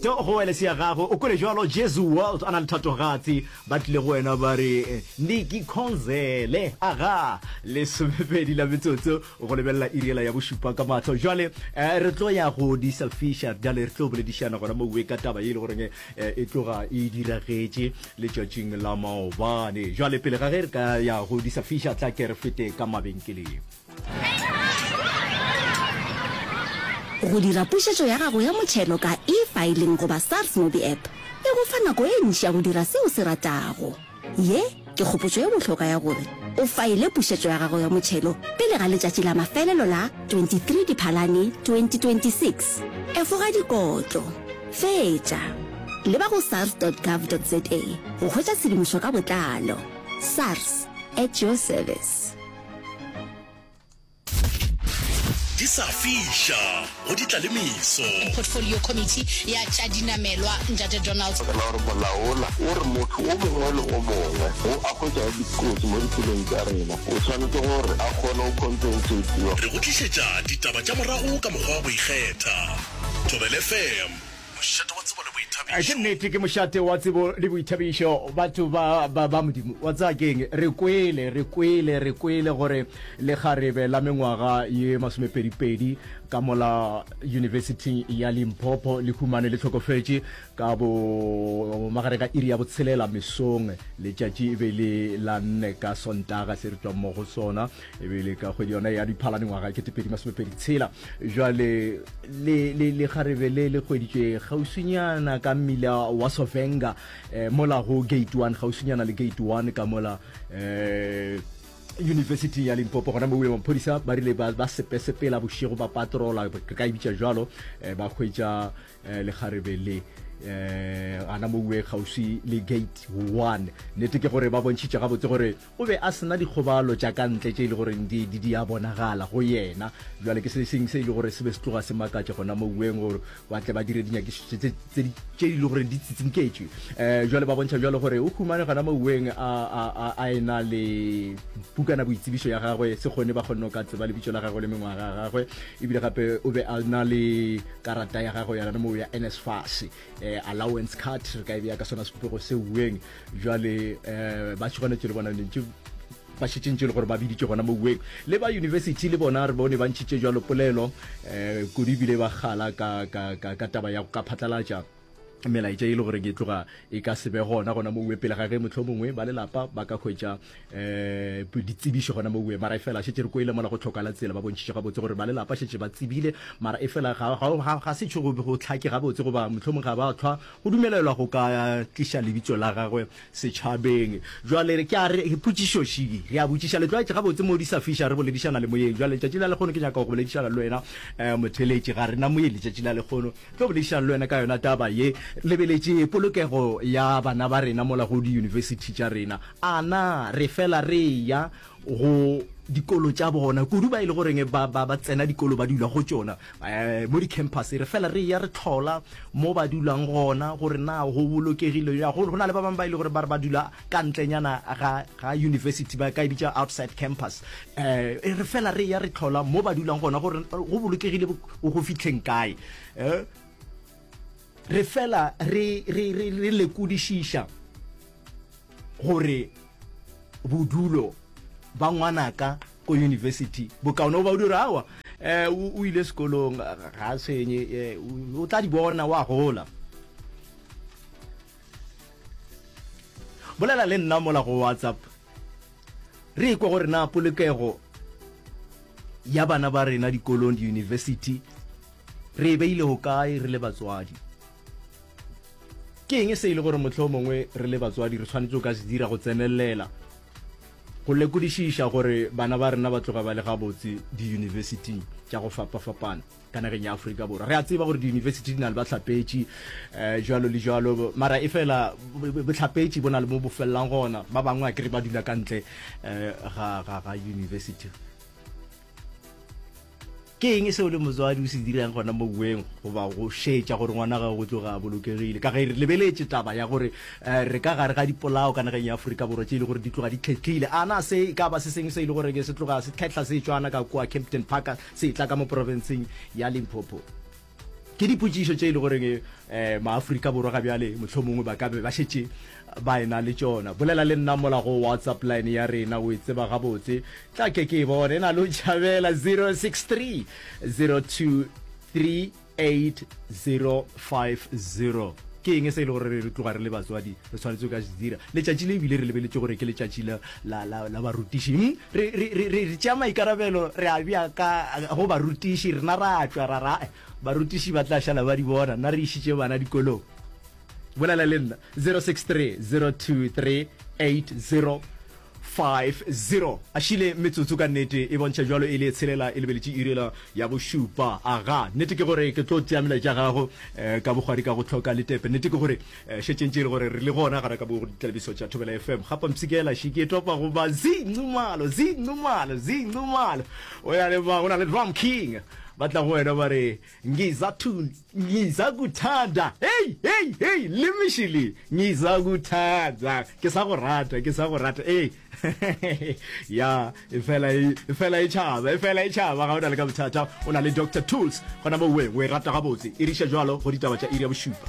To go wele se ya gago, o kwele jwalo, Jesu World a na le thatogatsi, ba tlile go wena ba re, Ndi ki khonzele. Aga, lesomepedi la metsotso go lebelela iri yela ya bošupa ka mahlo. Jwale re tlo ya go di selfisha, bjale re tlo boledišana gona mowe ka taba ye e le goreng e tloga e diragetše letšatšing la maobane. Jwale pele ga ge re ka ya go di selfisha, tla ke re fete ka mabenkeleng. Go dira pušetšo ya gago ya motšhelo ka e-filing goba SARS MobiApp e go fa nako e ntši ya go dira se o se ratago. Ye ke kgopotšo e bohlokwa ya gore o faile pušetšo ya gago ya motšhelo pele ga letšatši la mafelelo la 23 Diphalane 2026. Efoga dikotlo. Fetša. Leba go sars.gov.za go hwetša tshedimošo ka botlalo. SARS, at your service. di sa fiša go di tlalemiso portfolio committee ya tša dinamelwa ntate donald fela gore molaola o re motho o mongwe le o mongwe o a hwetša dikotsi mo dipelong tša rena o tshwanetse gore a kgone go compensatiwa re go tlišetša ditaba tša morago ka mokgwa wa go ikgetha thobelefm Mošate wa tsebo le boithabišo. Ke nnete, ke mošate wa tsebo le boithabišo, batho ba, ba, ba Modimo. Wa tsaya keng? Re kwele, re kwele, re kwele gore lekgarebe la mengwaga ye masomepedipedi ka mola Yunibesithing ya Limpopo le humane le hlokofetše ka bo magareng ga iri ya botshelela mesong. Letšatši e be le la nne ka Sontaga se re tšwang mo go sona. e be le ka kgwedi yona ya diphala dingwaga ke tepedi masomepedi tshela jale le kgarebe le le kgweditšwe gausinyana ka mmila wa sovenga um mola go gate one gausinyana le gate one ka mola um university ya limpopo gona mo maphodisa ba rile ba sepesepela bošego ba patrola re ka e bitša jalo um ba hwetša um lekgarebe le eh ana mo uwe kgausi le gate 1 nete ke gore ba bontšhitše gabotse gore O be a se na dikgobalo tša ka ntle tše e le goreng di, di, di a bonagala go yena. Bjale ke se seng se e le gore se be se tloga se makatša gona moweng, gore ba tle ba dire dinyakišišo tše, tše, tše di, tše e le gore di tsitsinketšwe. E, bjale ba bontšha bjalo gore o humane gona moweng a, a, a, a e-na le pukanaboitsebišo ya gagwe, se kgone ba kgonne go ka tseba lebitšo la gagwe le mengwaga ya gagwe, ebile gape o be a na le karata ya gagwe ya gona moo ya NSFAS. eh, allowance card re ka e beya ka sona sepopego se ueng jale eh, ba tšhwanetše le bona lentše ba šetšentše le gore ba biditše gona mo ueng le ba university le bona re bone ba ntšhitše jalo polelo um kudu ebile ba gala ka, ka, ka, ka taba ya go ka phatlalatša melaetša e le gore ke tloga e ka se be gona gona mo uwe pele ga ge motlho mongwe ba lelapa ba ka hwetša um ditsebišo gona mo mara e fela šetse re koile mola go tlhokala tsela ba bontšhitše gabotse gore ba lelapa šetse ba tsebile mara e fela ga se tšho go tlhake gabotse goba mohlomong ga ba tlhwa go dumelelwa go ka tliša lebitso la gagwe setšhabeng jale ke a re potšišo šiki re a botšiša letlwaetše gabotse mo di sa fiša re boledišana le moyeng jale letšatši la lekgono ke nyaka go boledišana le wena um motheletše ga rena moyeng letšatši la lekgono tlo boledišana le wena ka yona taba ye lebeletše polokego ya bana ba rena mola go di-university tša rena A na re fela re eya go dikolo tša bona, kudu ba e le goreng ba, ba, ba tsena dikolo ba dula go tšona, eh, mo di-campus, re fela re eya re tlhola mo ba dulang gona gore na go bolokegile ya go na le ba bangwe ba e le gore ba re ba dula ka ntlenyana ga, ga university ba ka e bitša outside campus eh, e re fela re eya re tlhola mo ba dulang gona gore go bolokegile go fitlheng kae eh, Re fela re, re, re, re lekodišiša gore bodulo ba ngwanaka ko yunibesithi bokaone goba o dira awa um o ile sekolong ga a tshwenye um o tla di bona wa gola bolela le nna mola go whatsapp re ikwa gore na polokego ya bana ba rena dikolong diyunibesithi Re e beile hokae re le batswadi? Ke eng se e le gore mohlomongwe re le batswadi re tshwanetse go ka se dira go tsenelela go lekodišiša gore bana ba rena ba tloga ba le gabotse diyunibesiting tša go fapafapana ka nageng ya Afrika Borwa? Re a tseba gore diyunibesiti di na le bahlapetši um jalo le jalo, mara e fela bohlapetši bo na le mo bo felelang gona. Ba bangwe a kere ba dula ka ntle um ga yunibesiti. Ke eng seo le motswadi o se dirang gona mo bueng goba go šetša gore ngwana gago go tloga a bolokegile? Ka ge re lebeletše taba ya gore eh, re ka gare ga dipolao ka nageng ya Afrika Borwa tše e le gore di tloga di khetlhile, a na se e ka ba se sengwe se e le gore ke se tloga se khetla se tšwana ka kua Kempton Park se e tla ka mo profenseng ya Limpopo? Ke dipotšišo tše e le goreng um maafrika borwa ga bjale mohlomongwe ba ka be ba šetše ba ena le tšona. Bolela le nna mola go WhatsApp line ya rena, o e tseba gabotse. Tla ke ke e bone e na le o tšhabela 063 02 38050. Ke eng se e le gore re tloga re le batswadi re tshwanetse go ka se dira letšatši le ebile re lebeletše gore ke letšatši la la, la, la barutiši hmm? re, re, re, re, re tšea maikarabelo re a bja ka go barutiši rena ra tšwa ra ra barutiši ba tla šala ba di bona nna re išitše bana dikolong bolela le nna 063 023 8050 a šile metsotso ka nnete e bontšha jalo e le tshelela e lebeletše irela ya bošupa aga nnete ke gore ke tlo tšea melaetša gago um ka bogwadi ka go tlhoka letepe nnete ke gore Eh, šetšeng tše e le gore re le gona gare ka bo ditlabiso tša thobela fm ga pampsikela še ke topa goba zincumalo zincumalo zincumalo o ya le ba go na le drum king ba tla go wena ba re ngiza kuthanda hei hei hei le mešili ngiza kuthanda ke sa go rata ke sa go rata ee ya e fela e, e fela e tšhaba e fela e tšhaba ga o na le ka bothata o na le dr tools gona mo weng o e rata gabotse e riša jalo go ditaba tša iri ya bošupa